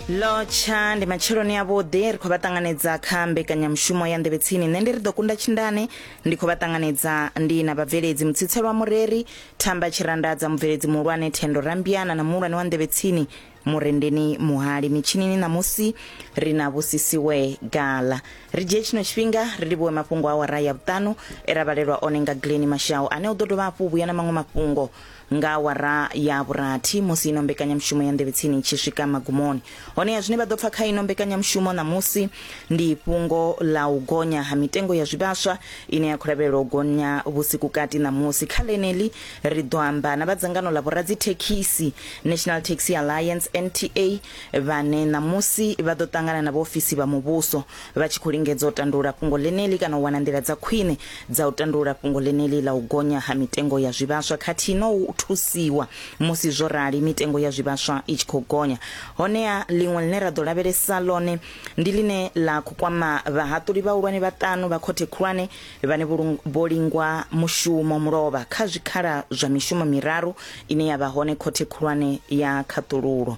lotsha ndi matsheloni avhuḓi ri khou vha ṱanganedza kha mbekanyamushumo ya nḓevhetsini nṋe ndi ri ḓo kunda tshindane ndi khou vha ṱanganedza ndi na vhabveledzi mutsitselwa mureri thamba tshirandadza mubveledzi muhulwane thendo rambiana na muhulwane wa nḓevhetsini murendeni muhali mitshinini ṋamusi ri na vhusisiwe gala ri dzhie tshino tshifhinga ri livhuwe mafhungo a wara ya vhuṱanu e ra vhalelwa one nga gleni mashau ane u ḓo dovha hafhu u vhuya na maṅwe mafhungo Nga awara ya vhurathi, musi ino mbekanyamushumo ya Nḓevhetsini i tshi swika magumoni. Honeha zwine vha ḓo pfa kha ino mbekanyamushumo ṋamusi ndi fhungo ḽa u gonya ha mitengo ya zwivhaswa ine ya khou lavhelelwa u gonya vhusikukati ṋamusi. Kha ḽeneḽi, ri ḓo amba na vha dzangano ḽa vhoradzithekhisi, National Taxi Alliance, NTA, vhane ṋamusi vha ḓo ṱangana na vhaofisi vha muvhuso. vha tshi khou lingedza u tandulula fhungo ḽeneḽi kana u wana nḓila dza khwine dza u tandulula fhungo ḽeneḽi ḽa u gonya ha mitengo ya zwivhaswa khathihi na u thusiwa musi zwo rali mitengo ya zwivhaswa i tshi khou gonya. Honeha, ḽiṅwe ḽine ra ḓo lavhelesa ḽone ndi ḽine ḽa khou kwama vhahaṱuli vhahulwane vhaṱanu vha Khothe Khulwane vhane vho lingwa mushumo mulovha kha zwikhala zwa mishumo miraru ine ya vha hone Khothe Khulwane ya Khaṱululo.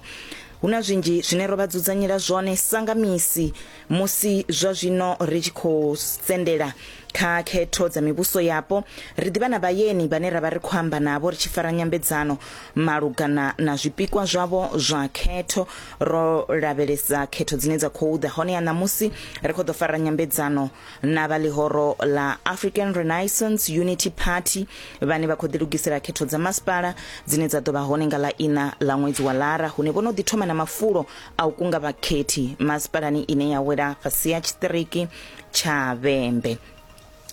Hu na zwinzhi zwine ro vha dzudzanyela zwone sa nga misi musi zwa zwino ri tshi khou sendela kha khetho dza mivhuso yapo. Ri ḓivha na vhayeni vhane ra vha ri khou amba navho ri tshi fara nyambedzano malugana na zwipikwa zwavho zwa khetho. Ro lavhelesa khetho dzine dza khou ḓa honeha ṋamusi ri khou ḓo fara nyambedzano na vha ḽihoro ḽa african renaissance unity party vhane vha khou ḓilugisela khetho dza masipala dzine dza ḓo vha hone nga ḽa ina ḽa ṅwedzi wa lara hune vho no ḓi thoma na mafulo a u kunga vhakhethi masipalani ine ya wela fhasi ya tshiṱiriki tsha vhembe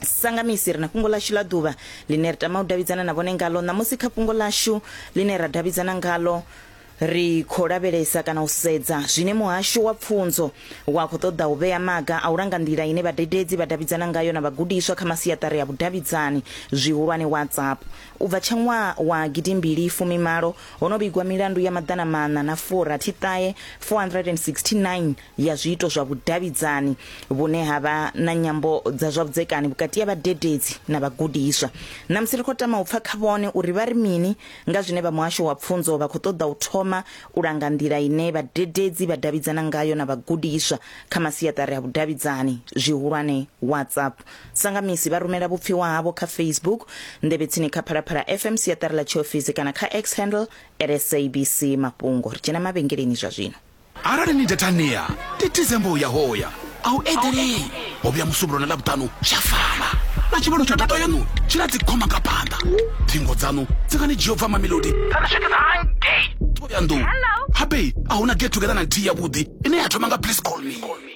sangamisi ri na fhungo ḽashu ḽa ḓuvha ḽine ri tama u davhidzana na vhone ngalo ṋamusi kha fhungo ḽashu ḽine ra davhidzana ngalo Ri khou lavhelesa kana u sedza zwine muhasho wa pfunzo wa khou ṱoḓa u vhea maga a u langa nḓila ine vhadededzi vha davhidzana ngayo na vhagudiswa kha masiaṱari a vhudavhidzani zwihulwane WhatsApp. U bva tsha ṅwaha wa gidimbili fumi malo, ho no vhigwa milandu ya maḓana maṋa na fu rathi ṱahe, 469, ya zwiito zwa vhudavhidzani vhune ha vha na nyambo dza zwa vhudzekani vhukati ha vhadededzi na vhagudiswa. Ṋamusi ri khou tama u pfa kha vhone uri vha ri mini Nga zwine vha Muhasho wa Pfunzo vha khou ṱoḓa u thoma u langa nḓila ine vhadededzi vha davhidzana ngayo na vhagudiswa kha masiaṱari a vhudavhidzani zwihulwane, WhatsApp. Sangamisi vha rumela vhupfiwa havho kha Facebook, Nḓevhetsini kha Phalaphala FM, siaṱari ḽa tshiofisi kana kha X handle at SABC Mafhungo. Ri tshena mavhengeleni zwa zwino. arali ni detania titize mbo ya hoya a u eḓelei ho vhuya musumbulo na ḽavhuṱanu tsha fana na tshivhalo tsha data yanu tshi na dzikhoma nga phanḓa thingo dzanu dzi nga ni dzhia u bva mamelodi dza ni swikisa hangei thoyandou habe a hu na get together na nthihi yavhuḓi ine ya thoma nga please call me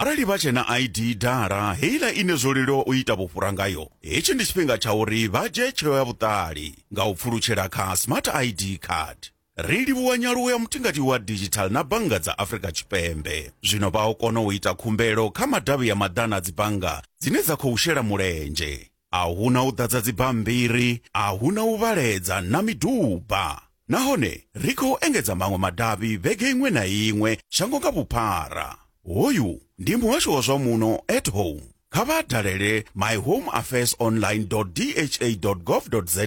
Arali vha tshe na ID dala heiḽa ine zwo leluwa u ita vhufhura ngayo, hetshi ndi tshifhinga tsha uri vha dzhie tsheo ya vhuṱali nga u pfulutshela kha Smart ID Card. Ri livhuwa nyaluwo ya mutingati wa didzhithaḽa na bannga dza Afrika Tshipembe. Zwino vha o kona u ita khumbelo kha madavhi ya maḓana a dzibannga dzine dza khou shela mulenzhe. a hu na u ḓadza dzibammbiri, a hu na u vhaledza na miduba. Nahone ri khou engedza maṅwe madavhi vhege iṅwe na iṅwe shango nga vhuphara. Hoyu ndi muhasho wa zwa muno at home. Kha vha dalele myhomeaffairsonline.dha.gov.za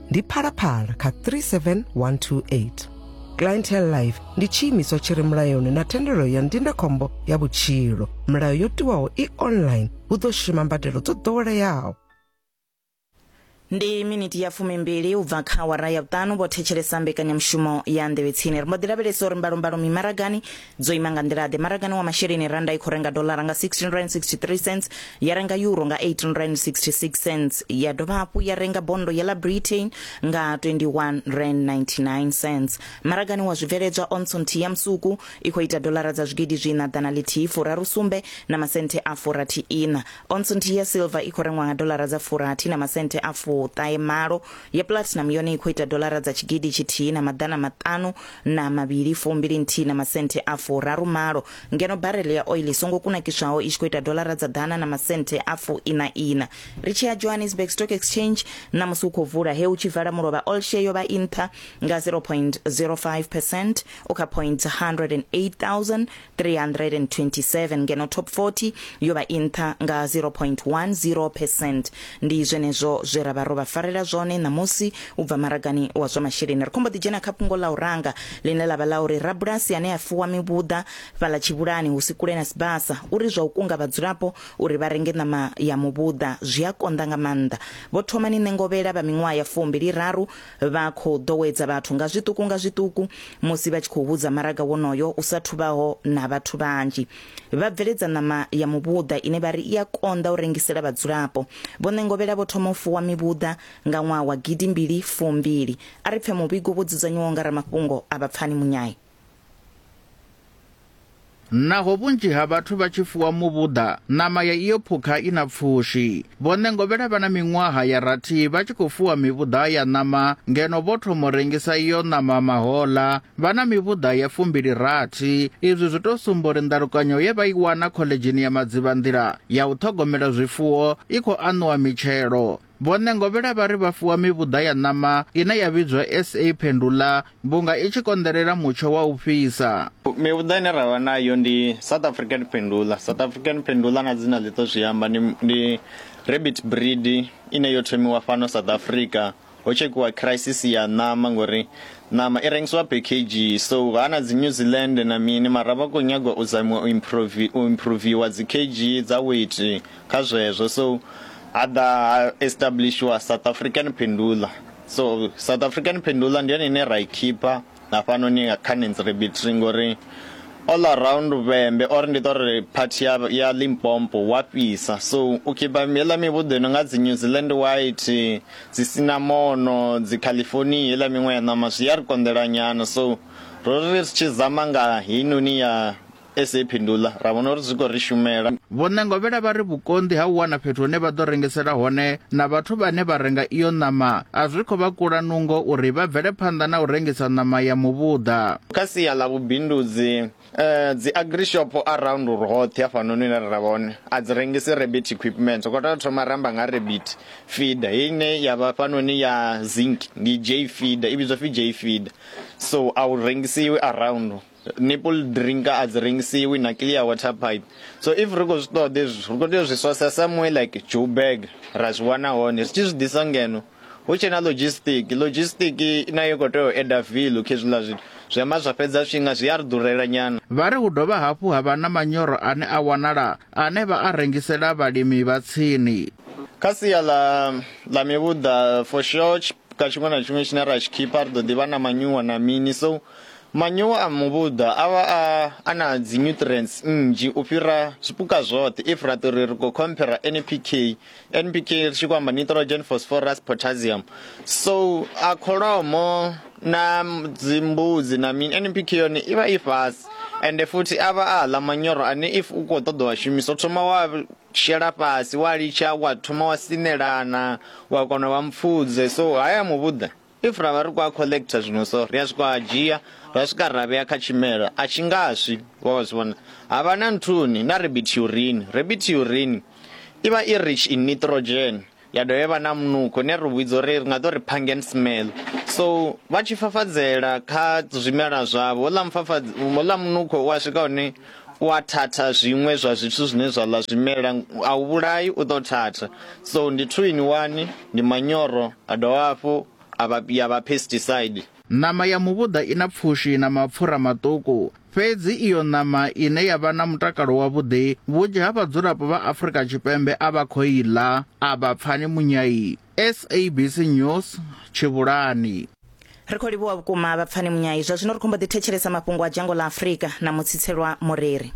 ndi phalaphala kha 37128 clientele life ndi tshiimiswa tshi re mulayoni na thendelo ya ndindakhombo ya vhutshilo milayo yo tiwaho i online hu ḓo shuma mbadelo dzo ḓoweleaho ndi miniti ya fumimbili u bva kha awara ya vhuṱanu vho thetshelesa mbekanyamushumo ya nḓevhetsini ri mbo ḓi lavhelesa uri mbalombalo mimaragani dzo ima nga nḓila-ḓe maragani wa masheleni randa i khou renga dolara nga 16 rand 63 cents ya renga euro nga 18 rand 66 cents ya dovha hafhu ya renga bondo ya la britain nga 21 rand 99 cents maragani wa zwibveledzwa onso nthihi ya musuku i khou ita dolara dza zwigidi zwiina ḓana lithihi furaru sumbe na masenthe a furathi ina onso nthihi ya silver i khou rengwa nga dolara dza furathi na masenthe a fuṱahe malo ya platinum yone i khou ita dolara dza tshigidi tshithihi na maḓana maṱanu na mavhili fumbili nthihi na masenthe a furaru malo ngeno barele ya oil i songo kunakiswaho i tshi khou ita dolara dza ḓana na masenthe a fu ina ina ri tshi ya johannesburg stock exchange na musi u khou vula he u tshi vala mulovha all share yo vha i nṱha nga 0.05 percent u kha point 327 ngeno top 40 yo vha i nṱha nga 0.10 percent ndi zwenezwo zwe ra vha ro vha farela zwone ṋamusi u bva maragani wa zwa masheleni ri khombo ḓi dzhena kha fhungo ḽa u ranga ḽine ḽa vha ḽa uri rabulasi ane a fuwa mivhuḓa fhaḽa tshivhulani hu si kule na sibasa uri zwa u kunga vhadzulapo uri vha renge ṋama ya muvhuḓa zwi a konḓa nga maanḓa vho thomani ṋengovhela vha miṅwaha ya fumbili raru Vha khou ḓowedza vhathu nga zwiṱuku nga zwiṱuku musi vha tshi khou hudza maraga wonoyo u sa thubaho na vhathu vhanzhi. Vha bveledza ṋama ya muvhuḓa ine vha ri i a konḓa u rengisela vhadzulapo. Vho Ṋengovhela vho thoma u fuwa mivhuḓa nga ṅwaha wa gidi mbili fumbili. A ri pfe muvhigo wo dzudzanywaho nga ramafhungo a Vhapfani Munyayi. Naho vhunzhi ha vhathu vha tshi fuwa muvhuḓa, ṋama ya iyo phukha i na pfushi. Vho Ṋengovhela vha na miṅwaha ya rathi vha tshi khou fuwa mivhuḓa ya ṋama ngeno vho thoma u rengisa iyo ṋama mahoḽa vha na mivhuḓa ya fumbili rathi. Izwi zwi tou sumba uri ndalukanyo ye vha i wana khoḽedzhini ya Madzivhanḓila ya u ṱhogomela zwifuwo i khou aṋuwa mitshelo. Vho Ṋengovhela vha ri vha fuwa mivhuḓa ya ṋama ine ya vhidzwa SA Phendula vhunga i tshi konḓelela mutsho wa u fhisa. Mivhuḓa ine ra vha nayo ndi South African Phendula, South African Phendula na dzina ḽi ḓo zwi amba ndi ndi rabbit breed ine yo thomiwa fhano South Africa ho tshekhiwa crisis ya ṋama ngori ṋama i rengisiwa per kg so ha na dzi New Zealand na mini mara vha khou nyagwa u zamiwa u improve u improviwa dzi kg dza weight kha zwezwo so ha ḓa ha establishiwa South African Pendula so South African Pendula ndi yone ine ra i khipha hafhanoni kha Nancy Rebitri ngori all around vhembe or ndi to ri part ya ya Limpopo wa fhisa so u khipha heḽa mivhuḓo ino nga dzi New Zealand white dzi sinamono dzi California heḽa miṅwe ya ṋama zwi ya ri konḓela nyana so ro ri ri tshi zama nga heinoni ya SA i phinduḽa, ra vhona uri zwi khou ri shumela. Vho Ṋengovhela vha ri vhukonḓi ha u wana fhethu hune vha ḓo rengisela hone na vhathu vhane vha renga iyo ṋama a zwi khou vha kula nungo uri vha bvele phanḓa na u rengisa ṋama ya muvhuḓa. Kha sia ḽa vhubindudzi, dzi Agrishop around roṱhe hafhanoni hune ra vha hone a dzi rengisi rabbit equipment. Ri khou tea u thoma ra amba nga ha rabbit feeder heyi ine ya vha hafhanoni ya Zinc, ndi J feeder, i vhidzwa u pfi J feeder. So a u rengisiwi around. nipple drinker a dzi rengisiwi na clear water pipe so if ri khou zwi ṱoḓa hezwi ri khou tea u zwi sourcer somewhere like joburg ra zwi wana hone zwi tshi zwi ḓisa ngeno hu tshe na logistic logistic nayo i khou tea u eda vilu kha hezwiḽa zwithu zwi amba zwa fhedza zwifhinga zwi a ri ḓurela nyana Vha ri hu dovha hafhu ha vha na manyoro ane a wanala ane vha a rengisela vhalimi vha tsini. kha sia ḽa ḽa mivhuḓa for sure ka tshiṅwe na tshiṅwe tshine ra tshi khipha ri ḓo ḓi vha na manyuwa na mini so Manyowa a muvhuḓa a vha a a na dzi nutrients nnzhi u fhira zwipuka zwoṱhe if ra tori ri khou compare NPK, NPK ri tshi khou amba nitrogen, phosphorus, potassium. So a kholomo na dzi mbudzi na mini NPK yone i vha i fhasi ende futhi a vha a ḽa manyoro ane if u kho ṱoḓa wa shumisa u thoma wa shela fhasi wa litsha wa thoma wa sinelana wa kona u vha mupfudze so haya muvhuḓa. If ra vha ri khou a collector zwino so ri a swika a dzhia ra swika ra vhea kha tshimela a tshi nga swi wa zwi vhona ha vha na nthuni na rabbit urine rabbit urine i vha i rich in nitrogen ya dovha ya vha na munukho ne ri vhidza uri ri nga to ri pangen smell so vha tshi fafadzela kha zwimela zwavho ḽa mufafadzi ḽa munukho wa swika hone u a thatha zwiṅwe zwa zwithu zwine zwa ḽa zwimela a u vhulai u ḓo thatha so ndi two in one ndi manyoro a dovha hafhu a vha ya vha pesticide. Ṋama ya muvhuḓa i na pfushi na mapfura maṱuku, fhedzi iyo ṋama ine ya vha na mutakalo wavhuḓi vhunzhi ha vhadzulapo vha Afrika Tshipembe a vha khou i ḽa, a vha pfani munyai. SABC News Tshivhulani. ri khou livhuwa vhukuma vhapfani munyai zwa zwino ri khombo ḓi thetshelesa mafhungo a dzhango ḽa afurika na mutsitselwa mureri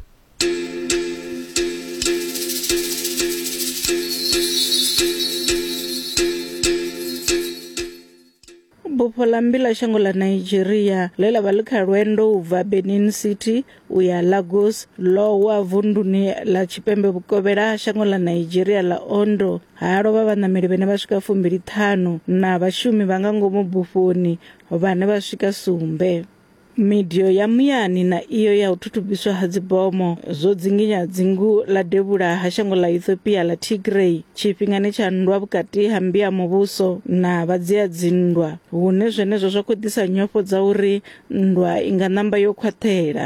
bufho ḽa mmbi ḽa shango ḽa nigeria ḽe ḽa vha ḽi kha lwendo u bva benin city u ya lagos ḽo wa vunduni ḽa tshipembe vhukovhela ha shango ḽa nigeria ḽa ondo ha lovha vhaṋameli vhene vha swika fumbili ṱhanu na vhashumi vha nga ngomu bufhoni vhane vha swika sumbe Midio ya muyani na iyo ya u thutubiswa ha dzibomo zwo dzinginya dzingu ḽa devhula ha shango ḽa Ethiopia ḽa Tigray tshifhingani tsha nndwa vhukati ha mmbi ya muvhuso na vhadzia dzinndwa, hune zwenezwo zwa khou ḓisa nyofho dza uri nndwa i nga ṋamba yo khwaṱhela.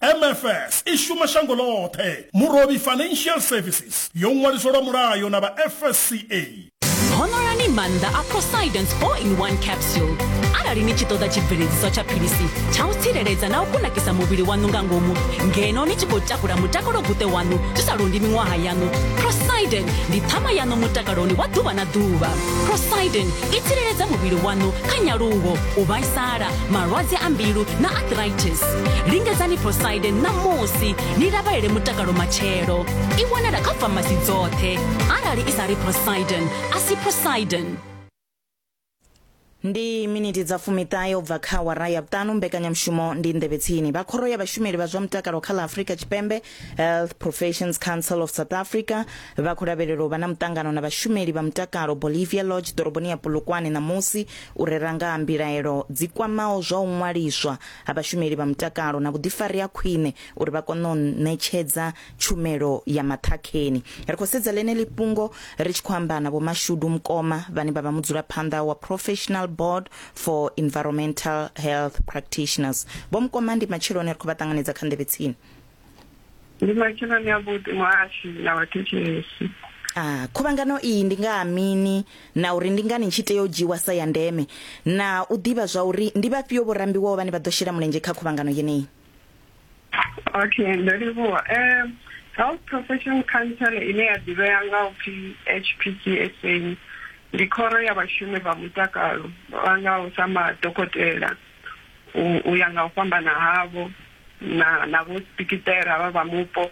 MFS i shuma shango ḽoṱhe. Murovhi Financial Services yo ṅwaliswa lwa mulayo na vha FSCA. Honoloni maanḓa a Poseidon's 4-in-1 capsule. Arali ni tshi ṱoḓa tshibveledziswa tsha philisi tsha u tsireledza na u kunakisa muvhili waṋu nga ngomu ngeno ni tshi khou takula mutakalo-guṱe waṋu zwi sa londi miṅwaha yaṋu, Poseidon ndi ṱhama yaṋu mutakaloni wa ḓuvha na ḓuvha. Poseidon i tsireledza muvhili waṋu kha nyaluwo, u vhaisala malwadze a mbilu na arthritis lingedzani prosidin ṋamusi ni lavhelele mutakalo matshelo i wanala kha famasi dzoṱhe arali i sa ri prosidin a si prosidin ndi miniti dza fumiṱahe u bva kha wara ya vhuṱanu mbekanyamushumo ndi nḓevhe tsini vha khoro ya vhashumeli vha zwa mutakalo kha ḽa afurika tshipembe Health Professions Council of South Africa vha khou lavhelelwa u vha na muṱangano na vhashumeli vha mutakalo Bolivia Lodge ḓoroboni ya Polokwane ṋamusi u rera nga ha mbilaelo dzi kwamaho zwa u ṅwaliswa ha vhashumeli vha mutakalo na vhuḓifari ha khwine uri vha kone u ṋetshedza tshumelo ya maṱhakheni. Ri khou sedza ḽeneḽi fhungo ri tshi khou amba na Vho Mashudu Mkoma vhane vha vha mudzulaphanḓa wa Professional Board for Environmental Health Practitioners. Vho Mkoma ndi matsheloni ri khou vha ṱanganedza kha nḓevhe tsini. ndi matsheloni avhuḓi muhashi na vhathetshelesi Ah, khuvhangano iyi ndi nga ha mini na uri ndi ngani tshi tea u dzhiwa sa ya ndeme na u ḓivha zwa uri ndi vhafhio vho rambiwaho vhane vha ḓo shela mulenzhe kha khuvhangano yeneyi okay ndo livhuwa um health profession council ine ya ḓivhea nga u pfi hpcsa ndi khoro ya vhashumi vha mutakalo vha ngaho sa madokotela u- u ya nga u fhambana havho na na vho spikitela vha vha mupo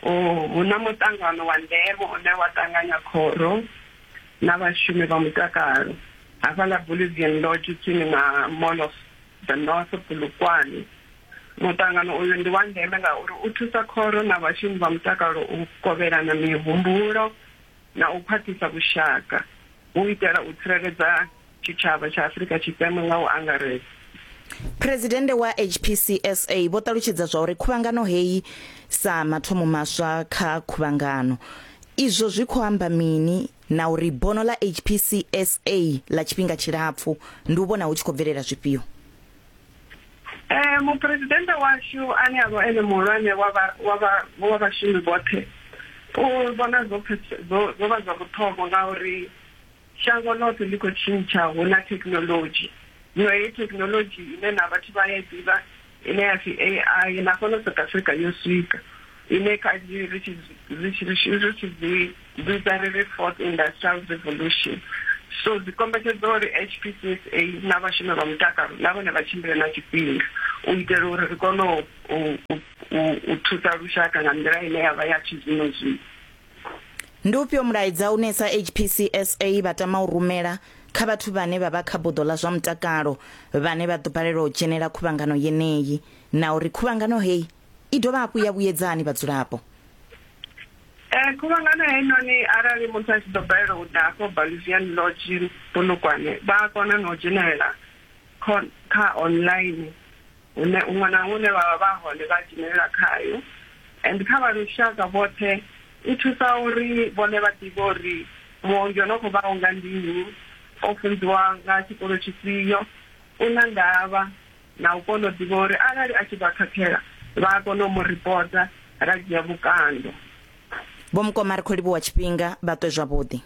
hu na muṱangano wa ndeme une wa ṱanganya khoro na vhashumi vha mutakalo hafhaḽa Bolivian Lodge tsini na Mall of the North Polokwane. Muṱangano uyu ndi wa ndeme ngauri u thusa khoro na vhashumi vha mutakalo u kovhelana mihumbulo na u khwaṱhisa vhushaka. u itela u tsireledza tshitshavha tsha Afrika Tshipembe nga u angaredza. Phresidennde wa HPCSA vho ṱalutshedza zwa uri khuvhangano heyi sa mathomo maswa kha khuvhangano izwo zwi khou amba mini na uri bono ḽa HPCSA ḽa tshifhinga tshilapfu ndi u vhona hu tshi khou bvelela zwifhio. Eh muphuresidennde washu ane a vha ene muhulwane wa vha wa vha wa vhashumi vhoṱhe u vhona zwo phethe- zwo zwo vha zwa vhuṱhogwa ngauri shango ḽoṱhe ḽi khou tshintsha hu na thekinoḽodzhi zwino heyi thekinoḽodzhi ine na vhathu vha ya i ḓivha ine ya pfi ai na fhano south africa yo swika ine kanzhi ri tshi zwi- ri tshi ri tshi ri tshi zwi Dzudzanyo ḽa ri Fourth Industrial Revolution, so, dzi kombetshedza uri HPCSA na vhashumi vha mutakalo na vhone vha tshimbile na tshifhinga u itela uri ri kone u thusa lushaka nga nḓila ine ya vha ya tshizwino-zwino. Ndi ufhio mulaedza une sa HPCSA vha tama u rumela kha vhathu vhane vha vha kha buḓo ḽa zwa mutakalo vhane vha ḓo balelwa u dzhenela khuvhangano yeneyi na uri khuvhangano heyi I dovha hafhu ya vhuyedza hani vhadzulapo? Eh, khuvhangano heinoni arali muthu a tshi ḓo balelwa u ḓa afho Bolivian Lodge Polokwane vha a kona na u dzhenelela kha online hune huṅwe na huṅwe hune vha vha vha hone vha dzhenelela khayo and kha vha lushaka vhoṱhe i thusa uri vhone vha ḓivhe uri muongi o no khou vha unga ndi nnyi o funziwa nga tshikolo tshifhio u na ndavha na u kona u ḓivha uri arali a tshi vha khakhela vha a kona u mu ripota ra dzhia vhukando. Vho Mukoma ri khou livhuwa tshifhinga, vha ṱwe zwavhuḓi.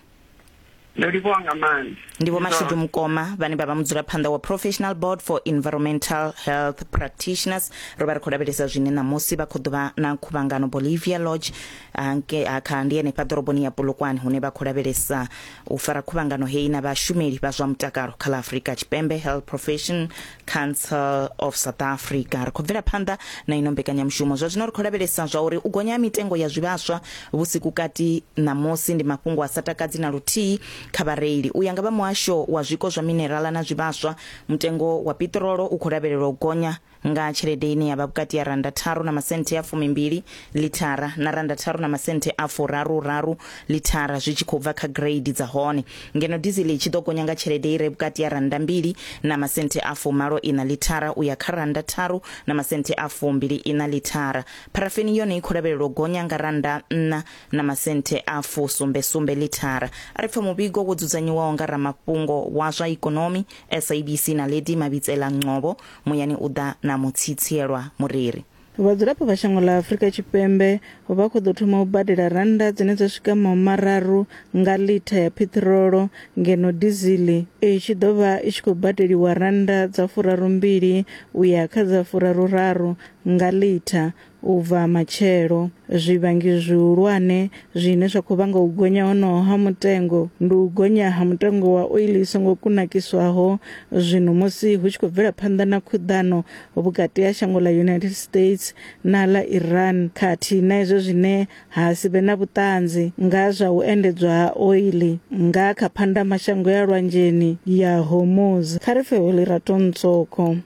Ndo livhuwa nga maanḓa. Ndi Vho Mashudu Mukoma vhane vha vha mudzulaphanḓa wa Professional Board for Environmental Health Practitioners. Ro vha ri khou lavhelesa zwine ṋamusi vha khou ḓuvha na khuvhangano Bolivia Lodge ha kha ndi henefha ḓoroboni ya Polokwane hune vha khou lavhelesa U fara khuvhangano heyi na vhashumeli vha zwa mutakalo kha ḽa Afrika Tshipembe, Health Profession Council of South Africa. Ri khou bvela phanḓa na ino mbekanyamushumo. Zwa zwino ri khou lavhelesa zwa uri u gonya ha mitengo ya zwivhaswa vhusiku kati ṋamusi ndi mafhungo a sa takadzi na luthihi kha vhareili. U ya nga vha muhasho wa zwiko zwa minerala na zwivhaswa, mutengo wa piṱirolo u khou lavhelelwa u gonya nga tshelede ine ya vha vhukati ya rannda tharu na masenthe a fumimbili lithara na rannda tharu na masenthe a furaru-raru lithara zwi tshi khou bva kha gireidi dza hone, ngeno dizili i tshi ḓo gonya nga tshelede i re vhukati ya rannda mbili na masenthe a fumalo-iṋa lithara u ya kha rannda tharu na masenthe a fumbili-iṋa lithara. Pharafeni yone i khou lavhelelwa u gonya nga rannda nṋa na masenthe a fusumbe-sumbe lithara. A ri pfa muvhigo wo dzudzanyiwaho nga ramafhungo wa zwa ikonomi, SABC, Naledi Mabitsela-Ngcobo Muyani u ḓa na mutsitsielwa mureri. Vhadzulapo vha shango ḽa Afrika Tshipembe vha khou ḓo thoma u badela rannda dzine dza swika mahu mararu nga litha ya phiṱirolo ngeno dizili i tshi ḓo vha i tshi khou badeliwa rannda dza furarumbili u ya kha dza furaruraru nga litha U bva matshelo, zwivhangi zwihulwane zwine zwa khou vhanga u gonya honoho ha mutengo ndi u gonya ha mutengo wa oiḽi i songo kunakiswaho zwino musi hu tshi khou bvela phanḓa na khuḓano vhukati ha shango ḽa United States na ḽa Iran khathihi na izwo zwine ha si vhe na vhuṱanzi nga zwa u endedzwa ha oiḽi nga kha phandamashango ya lwanzheni ya Hormuz. Kha ri pfe Holerato Ntsoko.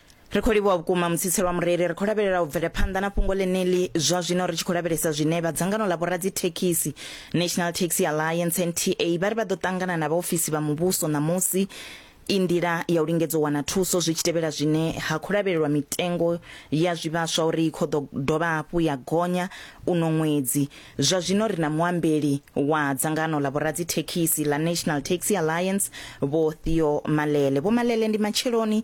ri khou livhuwa vhukuma mutsitse lwa mureli ri khou lavhelela u bvelephanḓa na fhungo ḽeneḽi zwa zwino ri tshi khou lavhelesa zwine vha dzangano ḽa vhoradzithekhisi national taxi alliance nta vha ri vha ḓo ṱangana na vhaofisi vha muvhuso ṋamusi i nḓila ya u lingedza u wana thuso zwi tshi tevhela zwine ha khou lavhelelwa mitengo ya zwivhaswa uri i khou ḓo dovha hafhu ya gonya uno ṅwedzi zwa zwino ri na muambeli wa dzangano ḽa vhoradzithekhisi ḽa national taxi alliance vho theo malele vho malele ndi matsheloni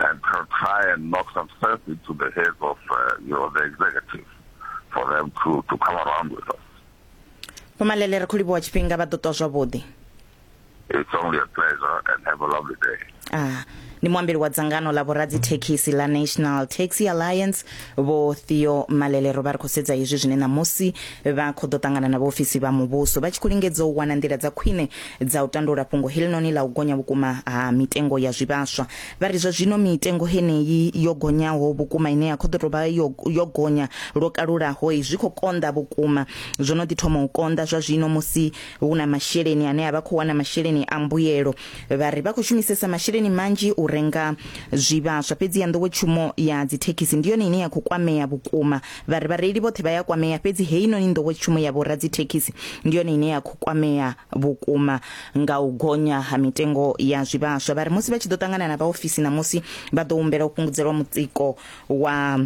and try and knock some sense into the heads of uh, you know the executive for them to, to come around with us. Pomalele re kholiboa tshifhinga vha ḓo ṱwa zwavhuḓi. It's only a pleasure and have a lovely day. Ah. ni muambeli wa dzangano la vhoradzi thekhisi la national taxi alliance vho theo malelero vha ri khou sedza hezwi zwine ṋamusi vha khou ḓo ṱangana na vhaofisi vha muvhuso vha tshi khou lingedza u wana nḓila dza khwine dza u tandula fhungo heḽinoni ḽa u gonya vhukuma ha mitengo ya zwivhaswa vha ri zwa zwino mitengo heneyi yo gonyaho vhukuma ine ya khou ḓo tou vha yo, yo gonya lwo kalulaho zwi khou konḓa vhukuma zwo no ḓi thoma u konḓa zwa zwino musi hu na masheleni ane a vha khou wana masheleni a mbuyelo vha ri vha khou shumisesa masheleni manzhi u renga zwivhaswa fhedzi ya nḓowetshumo ya dzithekhisi ndi yone ine ya khou kwamea vhukuma Vha ri vhareili vhoṱhe vha ya kwamea, fhedzi heinoni nḓowetshumo ya vhoradzithekhisi ndi yone ine ya khou kwamea vhukuma nga u gonya ha mitengo ya zwivhaswa. Vha ri musi vha tshi ḓo ṱangana na vhaofisi ṋamusi, vha ḓo humbela u fhungudzelwa mutsiko wa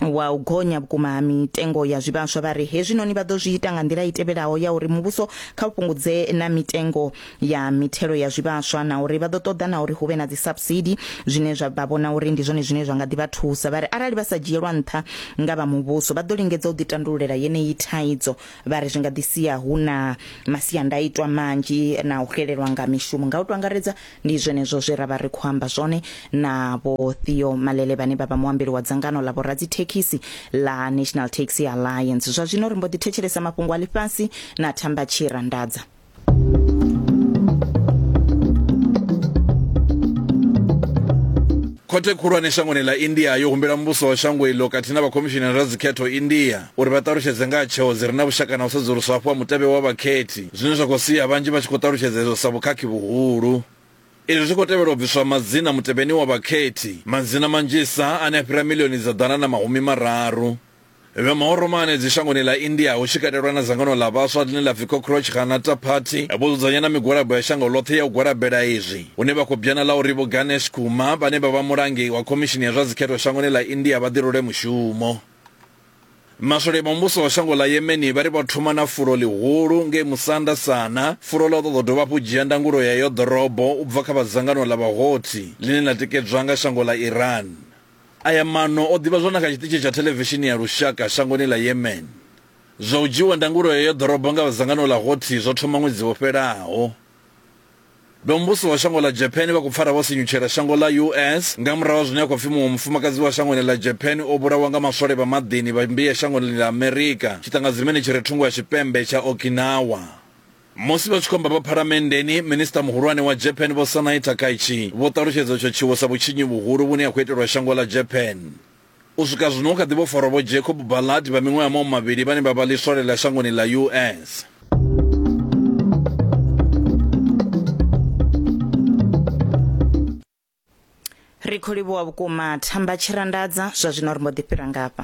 wa u gonya vhukuma ha mitengo ya zwivhaswa vha ri hezwinoni vha ḓo zwi ita nga nḓila i tevhelaho ya uri muvhuso kha u fhungudze na mitengo ya mithelo ya zwivhaswa na uri vha ḓo ṱoḓa na uri hu vhe na dzi subsidy zwine zwa vha vhona uri ndi zwone zwine zwa nga ḓi vha thusa vha ri arali vha sa dzhielwa nṱha nga vha muvhuso vha ḓo lingedza u ḓitandululela yeneyi thaidzo vha ri zwi nga ḓi sia hu na masiandaitwa manzhi na u xelelwa nga mishumo nga u to angaredza ndi zwenezwo zwe ra vha ri khou amba zwone na vho Theo Malele vhane vha vha muambeli wa dzangano ḽa vhoradzithekhisi ḽa National Taxi Alliance zwa zwino ri mbo ḓi thetshelesa mafhungo a ḽifhasi na Thamba Tshirandadza khothe khulwane shangoni ḽa india yo humbela muvhuso wa shango iḽo khathihi na vhakhomishinara vha dzikhetho india uri vha ṱalutshedze nga ha tsheo dzi re na vhushaka na u sedzuluswa hafhu ha mutevhe wa vhakhethi zwine zwa khou sia vhanzhi vha tshi khou ṱalutshedza izwo sa vhukhakhi vhuhulu izwi zwi khou tevhela u bviswa madzina mutevheni wa vhakhethi madzina manzhisa ane a fhira milioni dza ḓana na mahumi mararu Vhe mahoromane dzishangoni ḽa India hu tshi katelwa na dzangano ḽa vhaswa ḽine ḽa pfi Cockroach Janata Party vho dzudzanya na migwalabo ya shango ḽoṱhe ya u gwalabela izwi hune vha khou bjana ḽa uri Vho Ganesh Kumar vhane vha vha mulangi wa khomishini ya zwa dzikhetho shangoni ḽa India vha ḓirule mushumo. Maswole vha muvhuso wa shango ḽa Yemeni vha ri vha thoma na fulo ḽihulu ngei musanda sana, fulo ḽa u ṱoḓa u dovha hafhu u dzhia ndangulo ya eyo ḓorobo u bva kha vha dzangano ḽa vhahothi ḽine ḽa tikedzwa nga shango ḽa Iran. Aya maano o ḓivhadzwa na kha tshiṱitshi tsha thelevishini ya lushaka shangoni ḽa Yemen. Zwa u dzhiiwa ndangulo heyo ḓorobo nga vha dzangano ḽa Houthi zwo thoma ṅwedzi wo fhelaho. Vhomuvhuso wa shango ḽa Japan vha khou pfara vho sinyutshela shango ḽa US nga murahu ha zwine ha khou pfi muṅwe mufumakadzi wa shangoni ḽa Japan o vhulawa nga maswole vha maḓini vha mmbia shangoni ḽa Amerika tshiṱangadzimeni tshi re thungo ha tshipembe tsha Okinawa. Musi vha tshi khou amba vha phalamenndeni, Minisiṱa Muhulwane wa Japan Vho Sanae Takaichi vho ṱalutshedza itsho tshiwo sa vhutshinyi vhuhulu vhune ha khou itelwa shango ḽa Japan. U swika zwino hu kha ḓi vho farwa Vho Jacob Ballard vha miṅwaha mau mavhili vhane vha vha ḽiswole ḽa shangoni ḽa US. ri khou livhuwa vhukuma thamba tshirandadza zwa zwino ri mbo ḓi fhira ngafha